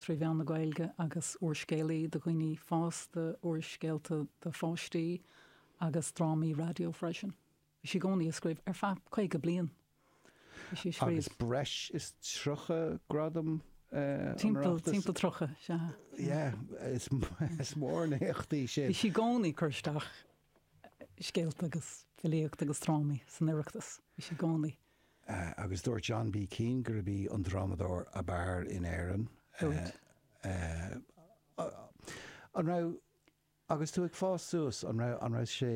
trí mheán na Gaeilge agus úrscéalta do dhaoine fásta, úrscéalta do pháistí agus drámaí raidió freisin. Bhí sí i gcónaí ag scríobh, ar feadh caoga bliain bhí sí ag scríobh. Agus breis is tríocha gradam an Oireachtais. Timpeall tríocha, sea. Yeah, is mór an éacht í sin. Bhí sí i gcónaí ag cur isteach scéalta agus filíocht agus drámaí san Oireachtas i gcónaí. agus dúirt John B. Keane gurb í an drámadóir ab fhearr in Éirinn. Dúirt. An raibh, agus tú ag fás suas, an raibh, an raibh sé,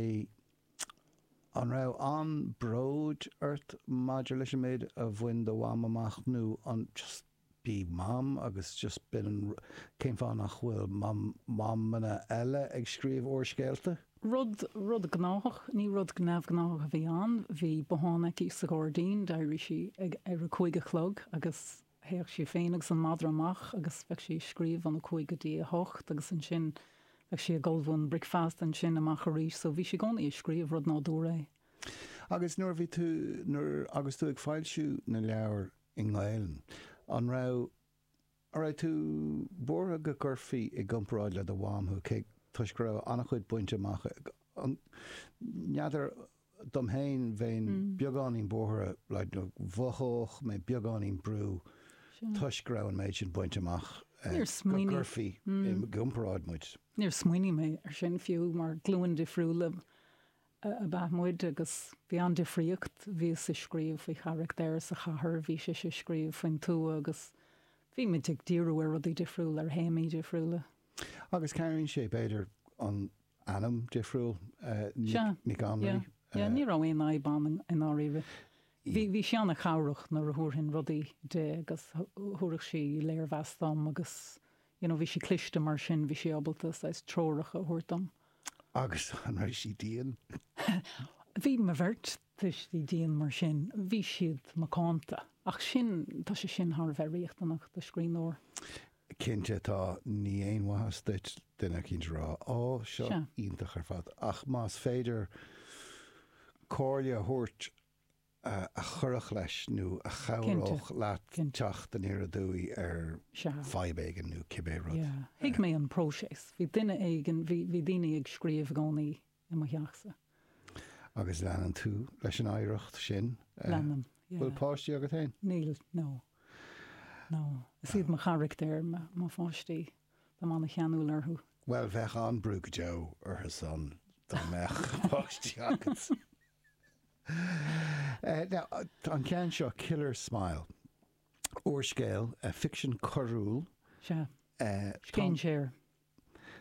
an raibh an-bhród ort maidir leis an méid a bhain do mham amach nó an, just. bhí mam agus just been cén fáth nach bhfuil mam- mamanna eile ag scríobh úrscéalta? Rud, rud gnáthach, ní rud neamhghnáthach a bhí ann. Bhí bothán aici sa ghairdín, d'éirigh sí ag, ar a cúig a chlog agus théadh sí féin agus an madra amach agus bheadh sí ag scríobh óna cúig go dtí a hocht agus ansin bheadh sí ag ullmhú an bhricfeasta ansin amach arís so bhí sí i gcónaí ag scríobh, rud nádúrtha é. Agus nuair a bhí tú, nuair, agus tú ag foilsiú na leabhar i nGaelainn. An raibh, an raibh tú buartha go gcuirfí i gcomparáid le do mham thú, cé, toisc go raibh an-chuid bainte amach aici, n'fheadar, dom fhéin, bheinn beagáinín buartha, like, nó mhothódh mé beagáinín brú toisc go raibh an méid sin bainte amach go gcuirfí i gcomparáid muid. Níor smaoinigh mé ar sin fiú, mar glúin difriúla. ab ea muid agus bhí an-difríocht, bhíos ag scríobh faoi charachtair sa chathair, bhí sise ag scríobh faoin tuath agus bhí muid ag díriú ar rudaí difriúla, ar théamaí difriúla. Agus cabhraíonn sé, b'fhéidir, an ainm difriúil, Sea. Nic Annraoi. Yeah, yeah, ní raibh aon fhadhb ann i ndáiríre. Bhí, bhí sí an-chabhrach nuair a thabharfainn rudaí di agus thabharfadh sí léirmheas dom agus you know bhí sí cliste mar sin bhí sí ábalta saghas treoracha a thabhairt dom. Agus an raibh sí dian? Bhí mo bheirt tuistí dian mar sin bhí siad macánta ach sin tá sé sin thar a bheith riachtanach do scríbhneoir. Cinnte tá, ní haon mhaitheas duit duine eicínt a rá tá seo iontach ar fad ach más féidir comhairle a thabhairt, a chuirfeadh leis nó a Cinnte. chabhródh leat Cinnte. teacht aniar aduaidh ar Sea. fadhb éigin nó cibé rud. Yeah. Thuig mé an próiseas. Bhí duine éigin, bhí, bhí daoine ag scríobh i gcónaí i mo theachsa. Agus leanann tú leis an oidhreacht sin? Leanaim, yeah. Bhfuil páistí agat féin? Níl, no. No. Is iad mo charachtair, mo, mo pháistí. Táim an-cheanúil orthu. Bhuel, bheadh an-bhrú go deo orthusan dá mbeadh páistí agat. An ceann seo, Killer Smile, úrscéal ficsean coiriúil. Sea. Scéinséir.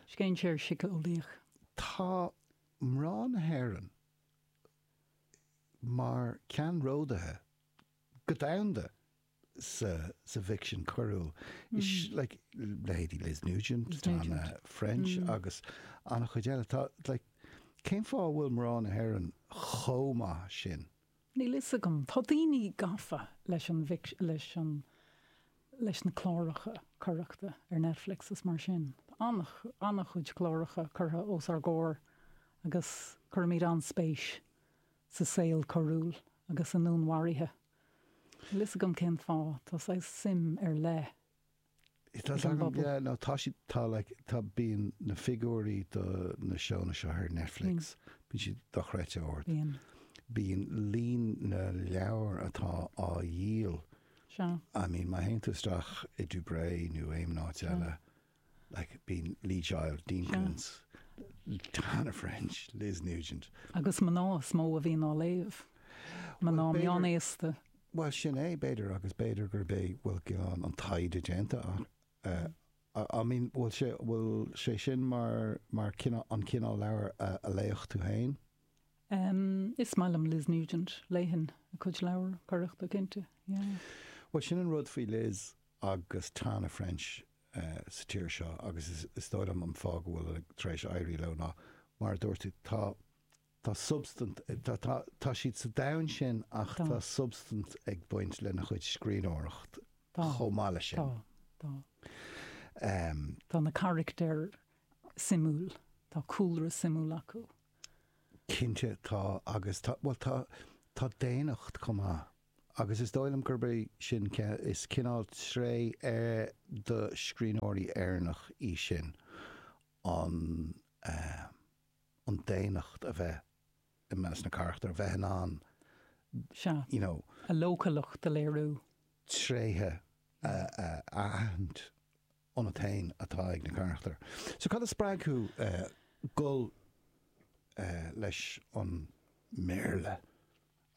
Scéinséir siceolaíoch. Tá mná na hÉireann mar ceannródaithe go domhanda sa bhficsean coiriúil. Is like, leithéidí Liz Nugent, Tana French agus an-chuid eile. Tá like, cén fáth a bhfuil mná na hÉireann chomh maith sin? Níl fhios agam. Tá daoine gafa leis an leis an leis na cláracha coireachta ar Netflix is mar sin. an-chuid cláracha curtha os ár gcomhair agus cuirimid an-spéis sa saol coiriúil agus i ndúnmharuithe. Níl a fhios agam cén fáth, tá saghas suim ar leith ag an bpobal. Yeah, no, tá siad, tá like, tá, bíonn na figiúirí do na seónna seo ar Netflix, bíonn siad dochreidte ard. Bíonn. Bíonn líon na leabhar atá á dhíol, I mean má théann tú isteach i Dubray nó aon áit eile, like bíonn Lee Child, Dean Koontz, Tana French, Liz Nugent. Agus mná is mó a bhíonn á léamh, mná meánaosta. Bhuel sin é, b'fhéidir, agus b'fhéidir gurb é, bhuel, níl aon taighde déanta acu. I mean, bhfuil sé sin mar cineál, an cineál leabhar a léifeadh tú féin? Umm, is maith liom Liz Nugent, léifinn a cuid leabhar, coireachta, cinnte, yeah. Bhuel sin an rud faoi Liz agus Tana French, sa tír seo agus is dóigh liom an fáth go bhfuil tar éis éirí leo ná mar a dúirt tú, tá tá substaint tá tá siad sa domhan sin ach tá substaint ag baint lena chuid scríbhneoireacht chomh maith leis sin. Tá, tá. Tá na carachtair suimiúil, tá cúlra suimiúil acu. Cinnte tá agus tá bhuel tá tá daonnacht chomh maith. Agus is dóigh liom gurb é sin is cineál tréith do scríbhneoirí Éireannach í sin, an daonnacht a bheith i measc na carachtar, a bheith in ann, you know, a leochaileacht a léiriú, tréithe a aithint ionat féin atá ag na carachtar. So cad a spreag thú dul leis an mBéarla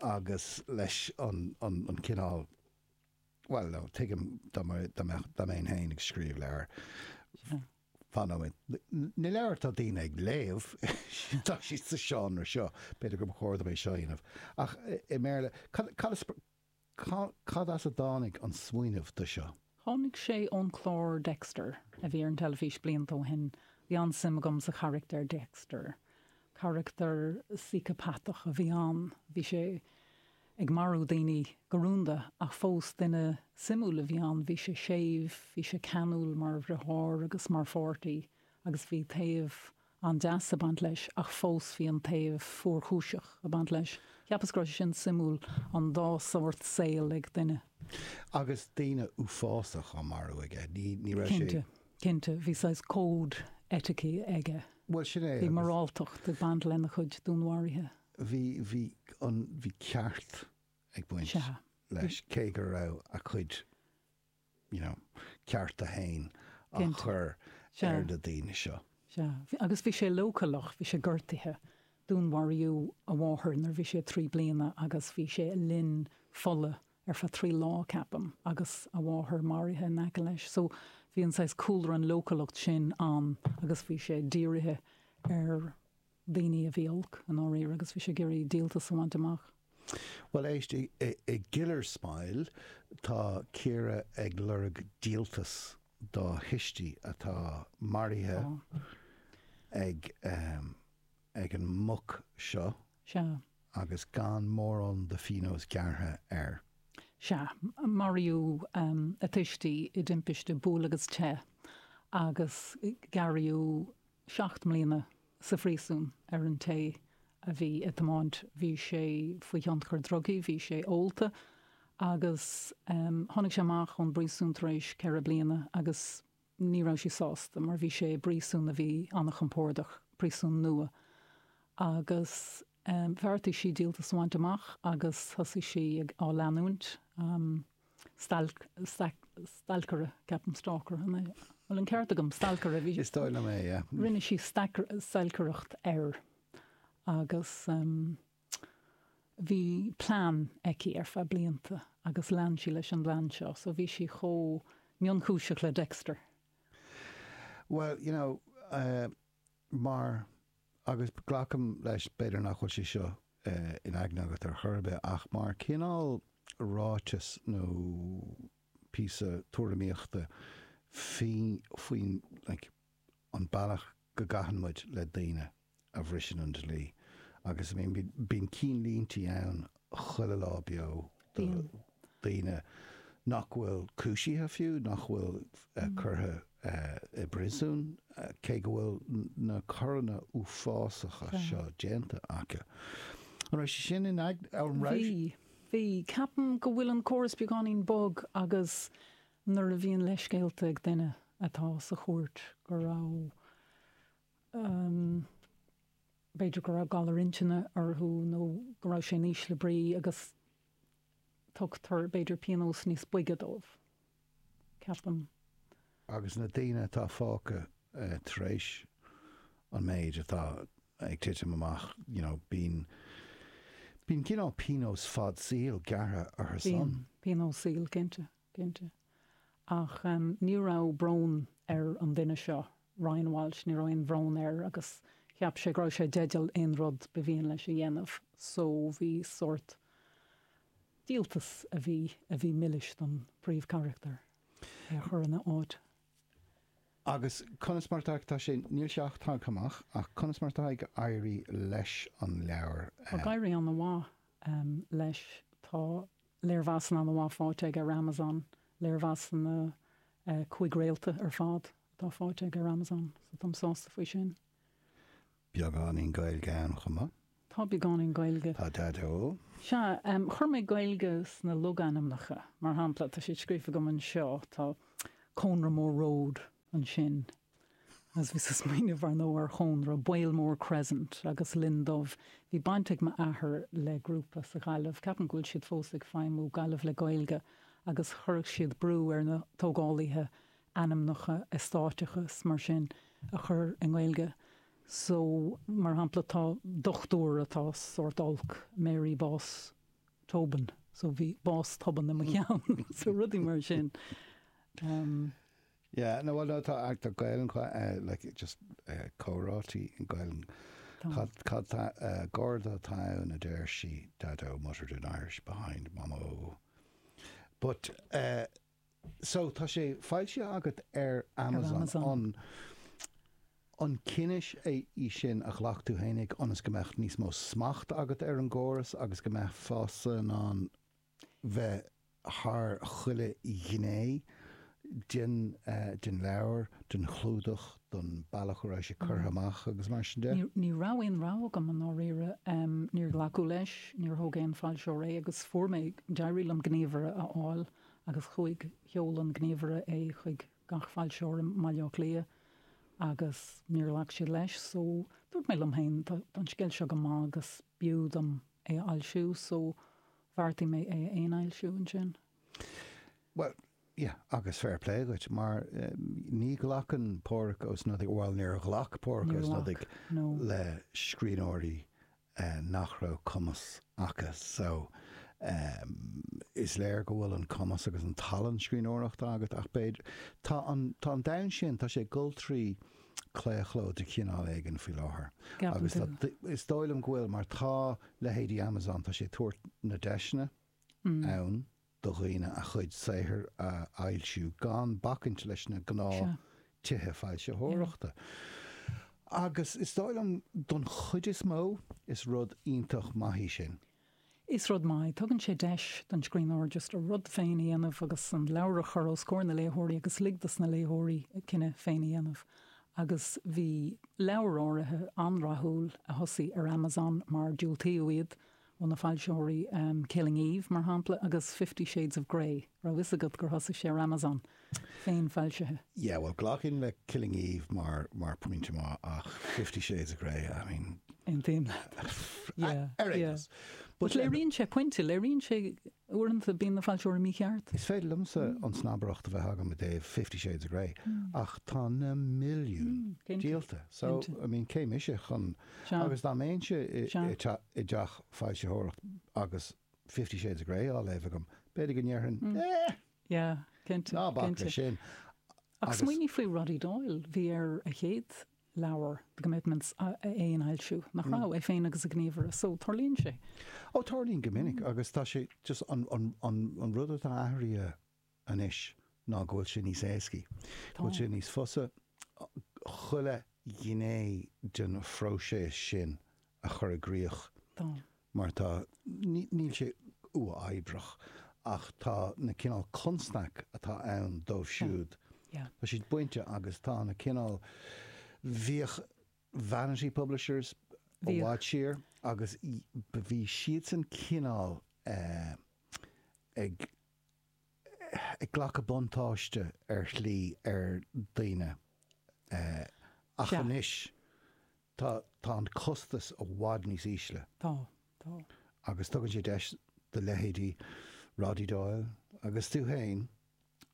agus leis an chineál, bhuel, no, tuigim, dá mbeadh, dá mbeinn féin ag scríobh leabhair, fan nóiméad, na leabhair atá daoine ag léamh, tá siad sa seánra seo, b'fhéidir gur chóir dom é seo a dhéanamh, ach i mBéarla, cad as a dtáinig an smaoineamh do seo? Tháinig sé ón chlár Dexter a bhí ar an teilifís blianta ó shin. Bhí an-suim agam sa charachtar Dexter. Carachtar síceapatach a bhí ann. Bhí sé ag marú daoine go rúnda ach fós duine suimiúil a bhí ann. Bhí sé séimh, bhí sé ceanúil mar dheartháir agus mar pháirtí agus bhí taobh an-deas ag baint leis ach fós bhí an taobh fuarchúiseach ag baint leis. Cheapas go raibh sé sin suimiúil, an dá shórt saol ag duine. Agus daoine uafásach á marú aige. Ní raibh sé. Cinnte, cinnte. Bhí saghas cód eiticí aige. Bhuel sin é agus. Bhí moráltacht ag baint lena chuid dúnmharuithe. Bhí, bhí an, bhí ceart ag baint. Sea. Leis cé go raibh a cuid. you know, cearta féin a chur ar na daoine seo. Sea. Agus bhí sé leochaileach, bhí sé gortaithe, dúnmharaíodh a mháthair nuair a bhí sé trí bliana agus bhí sé i linn fola ar feadh trí lá, ceapaim, agus a mháthair maraithe in aice leis. So, bhí an saghas cúlra, an leochaileacht sin ann agus bhí sé dírithe ar. daoine a bhí olc i ndáiríre agus bhí sé ag iarraidh díoltas a bhaint amach. Bhuel, éist, i Killer Smile tá Ciara ag lorg díoltas dá tuistí atá maraithe ag an mboc seo agus gan mórán de phíonós gearrtha air. Sea, maraíodh a tuistí i dtimpiste buail agus teith agus gearradh. seacht mbliana sa phríosún ar an té a bhí ag tiomáint. Bhí sé faoi thionchar drugaí, bhí sé ólta agus tháinig sé amach ón bpríosún tar éis ceithre bliana agus ní raibh sí sásta mar bhí sé i bpríosún a bhí an-chompordach, príosún nua agus. Bheartaigh sí díoltas a bhaint amach agus thosaigh sí á leanúint. Stalc, stalc, stalcaire, ceapaim stalker an é? An bhfuil an ceart agam, stalcaire, bhí, Is dóigh liom é, yeah. rinne sí stalc, stalcaireacht air agus bhí plean aici ar feadh blianta agus lean sí leis an bplean seo so bhí sí chomh mionchúiseach le Dexter. Well, you know, mar, agus glacaim leis, b'fhéidir nach bhfuil sé seo in aigne agat ar chor ar bith, ach mar chineál ráiteas nó píosa tuairimíochta faoin, like, an bealach go gcaitheann muid le daoine a bhriseann an dlí agus, I mean, bíonn cinnlíntí ann chuile lá beo do daoine nach bhfuil cúisithe fiú, nach bhfuil curtha i bpríosún, cé go bhfuil na coireanna uafásacha seo déanta acu. An raibh sé sin i d'aigne. Bhí. Ceapaim go bhfuil an córas beagáinín bog agus nuair a bhíonn leithscéalta ag duine atá sa chúirt go raibh, b'fhéidir go raibh galar intinne orthu nó go raibh sé in ísle brí agus tugtar, b'fhéidir, píonós níos boige dóibh, ceapaim. Agus na daoine atá fágtha tar éis an méid atá ag titim amach, you know, bíonn, bíonn cineál píonós fad saoil gearrtha orthusan. Bíonn, píonós saoil, cinnte. Cinnte. Ach ní raibh brón ar an duine seo, Ryan Walsh, ní raibh aon bhrón air agus cheap sé go raibh sé i dteideal aon rud ba mhian leis a dhéanamh. So bhí sórt díoltais a bhí, a bhí milis don bpríomhcharachtar, é a chur ina áit. Agus conas mar atá, tá sé, níl sé ach tagtha amach ach conas mar atá ag éirí leis an leabhar? Tá ag éirí an-mhaith. leis. Tá léirmheasanna ana mhaith faighte aige ar Amazon, léirmheasanna cúig réalta ar fad atá faighte aige ar Amazon, so táim sásta faoi sin. Beagáinín Gaeilge ann chomh maith. Tá beagáinín Gaeilge. Tá Daideo. Sea, chuir mé Gaeilge sna logainmneacha, mar shampla, tá siad scríofa agam anseo, tá Cónra Mór Road. ansin, agus bhíos ag smaoineamh, ar ndóigh, ar chónra Baol Mór Crescent agus Linn Dubh. Bhí baint ag m'athair le grúpa sa Ghaillimh, ceapaim go bhfuil siad fós ag feidhmiú, Gaillimh le Gaeilge, agus chuireadh siad brú ar na tógálaithe ainmneacha eastáit is mar sin a chur i nGaeilge. So, mar shampla, tá dochtúir atá sórt olc, Mary Bás Tobin, so bhí Bás Tobann i mo cheann, so rudaí mar sin. Yeah, no, well no, tá ag tá Gaeilge, like just eh, comhráití Gaeilge. Tá. Cad, cad tá eh, gabh i dtigh an deamhain a deir sí, Daideo muttered in Irish behind Mamó. But eh, so tá sé foilsithe agat ar Amazon. Ar Amazon. An, an cinneadh é í sin a ghlac tú fhéinig ionas go mbeadh níos mó smacht agat ar an gcóras agus go mbeadh fás san an bheith thar chuile ghné den, den leabhar, den chlúdach, don bealach a raibh sé curtha amach agus mar sin de. Ní raibh aon rogha agam i ndáiríre. Níor glacadh leis, níor thóg aon foilseoir é agus fuair mé, d'éirigh liom gníomhaire a fháil agus chuaigh, sheol an gníomhaire é chuig, gach foilsitheoir i mBaile Átha Cliath agus níor ghlac siad leis so dúirt mé liom féin tá an scéal seo go maith agus b'fhiú dom é a fhoilsiú so bheartaigh mé é a fhéinfhoilsiú ansin. Bhuel yeah agus fair play dhuit mar ní ghlacann Pádraig Ó Snodaigh, bhuel níor ghlac Pádraig Ó Snodaigh le scríbhneoirí nach raibh cumas aca so is léir go bhfuil an cumas agus an talann scríbhneoireachta agat ach b'fhéidir, tá an domhan sin, tá sé ag dul trí claochló de chineál éigin faoi láthair agus is dóigh liom go bhfuil mar tá leithéidí Amazon, tá sé ag tabhairt na deiseanna ann. do dhaoine a chuid saothair a fhoilsiú gan bacaint leis na gnáth tithe foilsitheoireachta. Agus is dóigh liom, don chuid is mó, is rud iontach maith é sin. Is rud maith é. Tugann sé deis don scríbhneoir just a rud féin a dhéanamh agus an leabhar a chur os comhair na léitheoirí agus lig dos na léitheoirí a gcinneadh féin a dhéanamh. Agus bhí leabhair áirithe an-rathúil a thosaigh ar Amazon mar diúltaíodh iad ó na foilsitheoirí Killing Eve, mar shampla, agus Fifty Shades of Grey. raibh fhios agat gur thosaigh sé ar Amazon? Féinfhoilsithe. Yeah, bhuel, ghlacfainn le Killing Eve mar phointe maith, ach Fifty Shades of Grey, I mean. Aontaím leat. Yeah, yeah. Ar aon nós. But léiríonn sé pointe, léiríonn sé. Uaireanta bíonn na foilsitheoirí mícheart. Is féidir liomsa an snobaireacht a bheith agam i dtaobh Fifty Shades of Grey ach tá na milliún díolta so I mean cé mise chun agus dá mbeinnse i dteach foilsitheoireachta agus Fifty Shades of Grey á léamh agam b'fhéidir go ndéarfainn eh ná bac leis sin. Ach smaoinigh faoi Roddy Doyle, bhí ar a chéad leabhar, The Commitments, a fhéinfhoilsiú, nach raibh, é féin agus a ghníomhaire So, tarlaíonn sé. Ó, tarlaíonn go minic agus tá sé just an, an, an, an rud atá athraithe anois ná go bhfuil sé níos éascaí, go bhfuil sé níos fusa chuile ghné den phróiseas sin a chur i gcríoch. Tá. mar tá, níl sé uathoibreach ach tá na cineál constaicí atá ann dóibh siúd, tá siad bainte agus tá na cineál, bhíodh Vanity Publishers i bhfad siar agus ba bhí siadsan cineál ag glacadh buntáiste ar shlí ar dhaoine ach anois, Tá, tá an costas i bhfad níos ísle. Tá, tá. Agus tugann sé deis do leithéidí Roddy Doyle agus tú féin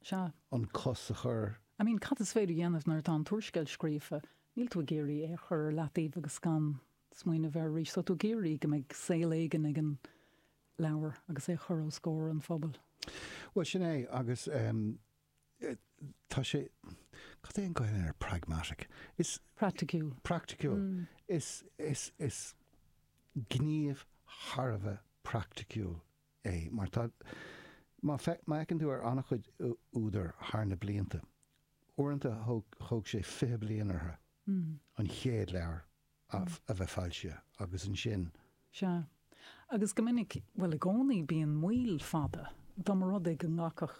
Sea. an cos a chur. I mean, cad is féidir a dhéanamh nuair atá an t-úrscéal scríofa, níl tú ag iarraidh é a chur ar leataobh agus gan smaoineamh air arís, so tá tú ag iarraidh go mbeidh saol éigin ag an leabhar agus é a chur os comhair an phobail. Bhuel, sin é agus. tá sé, cad é an Ghaelainn ar pragmatic? Is. Praiticiúil. Praiticiúil. Is, is, is gníomh thar a bheith praiticiúil é mar tá, má feic, má fheiceann tú ar an-chuid údar thar na blianta, uaireanta thóg, thóg sé fiche bliain orthu an chéad leabhar ámh, a bheith foilsithe, agus ansin. Sea. Agus go minic, bhuel, i gcónaí, bíonn moill fhada. Dá mba rud é go nglacfadh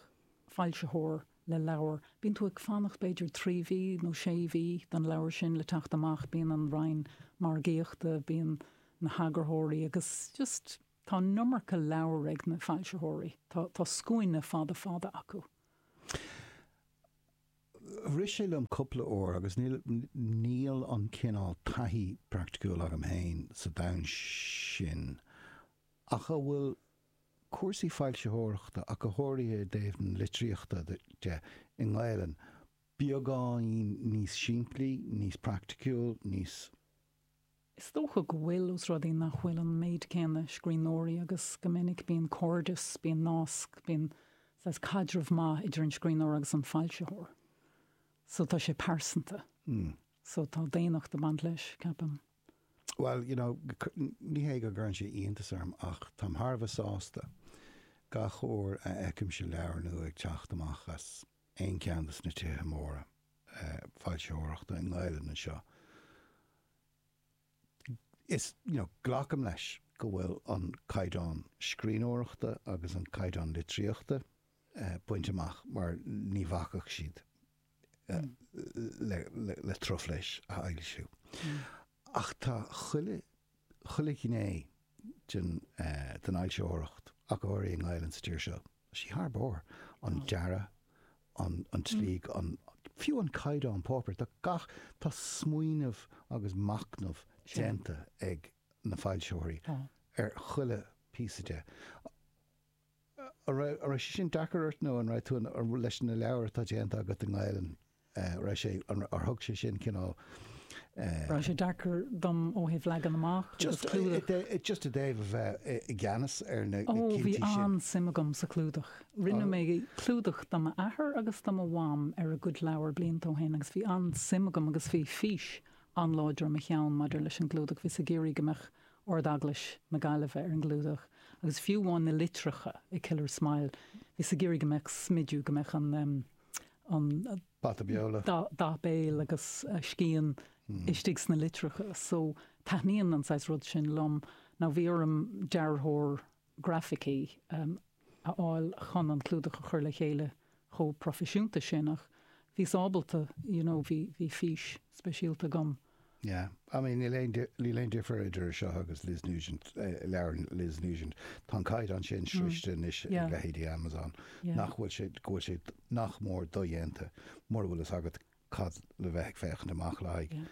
foilsitheoir le leabhar, bíonn tú ag fanacht b'fhéidir trí mhí nó sé mhí don leabhar sin le teacht amach, bíonn an Roinn Margaíochta, bíonn na heagarthóirí agus just tá an iomarca leabhar ag na foilsitheoirí, tá scuaine fada fada acu. Rith sé liom cúpla uair, agus níl an cineál taithí praiticiúil agam féin sa domhan sin, ach a bhfuil cúrsaí foilsitheoireachta, ach go háirithe i dtaobh na litríochta de, i nGaelainn, beagáinín níos simplí, níos praiticiúil, níos. Is dócha go bhfuil, ós rud é nach bhfuil an méid céanna scríbhneoirí agus go minic bíonn cairdeas, bíonn nasc, bíonn saghas caidreamh maith idir an scríbhneoir agus an foilsitheoir. So tá sé pearsanta. So tá daonnacht ag baint leis, ceapaim. Bhuel, you know, ní hé go gcuireann sé iontas orm ach táim thar a bheith sásta gach uair a fheicimse leabhar nua ag teacht amach as, aon cheann de na tithe móra foilsitheoireachta i nGaelainn anseo. Is, you know, glacaim leis go bhfuil an caighdeán scríbhneoireachta agus an caighdeán litríochta bainte amach mar ní bhacfadh siad le truflais a fhoilsiú. Ach tá chuile, chuile ghné den fhoilsitheoireacht, ach go háirithe i nGaelainn sa tír seo, tá sí thar barr, an dearadh, an tslí, fiú an caighdeán páipéir, tá gach, tá smaoineamh agus machnamh déanta ag na foilsitheoirí ar chuile phíosa de. An raibh sé sin deacair ort nó an raibh tú, leis na leabhair atá déanta agat i nGaelainn, raibh sé, ar thug sé sin cineál. raibh sé deacair dom ó thaobh leagan amach agus clúdach. Just, just i dtaobh a bheith i gceannas ar na cinntí sin. Ó, bhí an-suim agam sa chlúdach. Rinne mé clúdach do m'athair agus do mo mham ar a gcuid leabhar blianta ó shin agus bhí an-suim agam agus bhí fís an-láidir i mo cheann maidir leis an gclúdach. Bhíos ag iarraidh go mbeadh Ard-Eaglais na Gaillimhe ar an gclúdach agus fiú amháin na litreacha i Killer Smile. Bhíos ag iarraidh go mbeadh smidiú, go mbeadh an, an. Bata Beola. bata béil agus scian istigh sna litreacha so taithníonn an saghas rud sin liom. Now bhí orm dearthóir graificí a fháil chun an clúdach a chur le chéile chomh proifisiúnta sin ach bhíos ábalta, you know bhí fís speisialta agam. Yeah. I mean níl aon, níl aon difear idir seo agus Liz Nugent, leabhar Liz Nugent. Tá an caighdeán sin sroichte anois ag leithéidí Amazon nach bhfuil sé, go bhfuil sé nach mór dodhéanta mura bhfuil a fhios agat cad le bheith ag féachaint amach le haghaidh.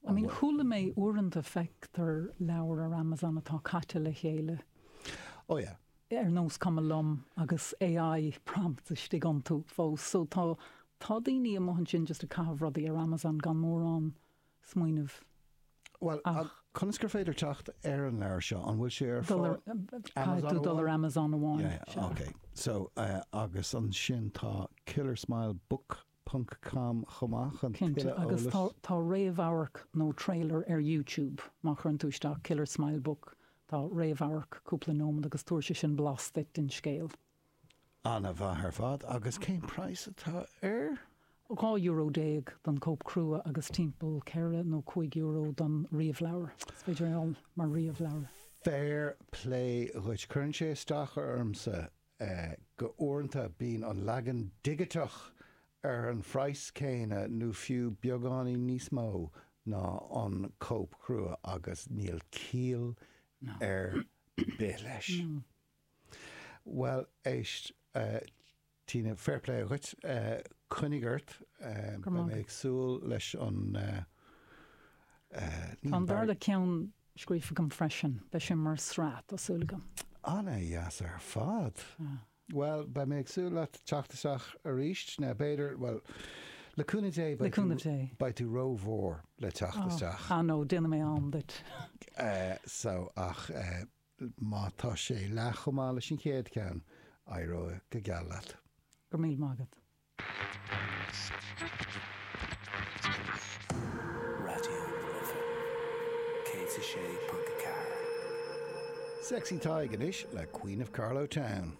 I mean chuala mé uaireanta feictear leabhar ar Amazon atá caite le chéile. Oh yeah. bheith ar nós cuma liom agus AI prompts istigh iontu fós. So tá tá daoine amuigh ansin just ag caitheamh rudaí ar Amazon gan mórán smaoinimh. Bhuel ach conas gur féidir teacht ar an leabhar seo? An bhfuil sé ar Dul ar fáil caithfidh tú dul ar Amazon amháin. Yeah, yeah, sea. okay. So eh agus ansin tá Killer Smile Book ponc com chomh maith chun tuilleadh eolais. Cinnte, agus tá réamhamharc nó trailer ar YouTube, má chuireann tú isteach Killer Smile Book, tá réamhamharc cúpla nóiméad agus tabharfaidh sé sin blas duit den scéal. An-mhaith ar fad, agus cén praghas atá air? Dhá euro déag don cóip crua agus timpeall ceithre nó cúig euro don ríomhleabhar. Is féidir é a fháil mar ríomhleabhar. Fair play dhuit. Cuireann sé isteach ormsa. ii, Uaireanta bíonn an leagan digiteach ar an phraghas céanna nó fiú beagáinín níos mó ná an cóip chrua agus níl ciall ar bith leis. Bhuel, éist, a Tina, fair play dhuit, coinnigh ort, beidh mé ag súil leis an Tá an dara ceann scríofa agam freisin. Beidh sé mar shraith, tá súil agam. Ana dheas ar fad. Bhuel, beidh mé ag súil leat a theacht isteach arís. Now, b'fhéidir, bhuel, le cúnamh Dé, Le cúnamh Dé. beidh tú ró-mhór le teacht isteach. Ah no, déanfaidh mé am duit. So, ach má tá sé leath chomh maith leis an chéad cheann, éireoidh go geal leat. Go raibh míle maith agat. Raidió na Life 106.4. Sexy Tadhg anois le Queen of Carlow Town.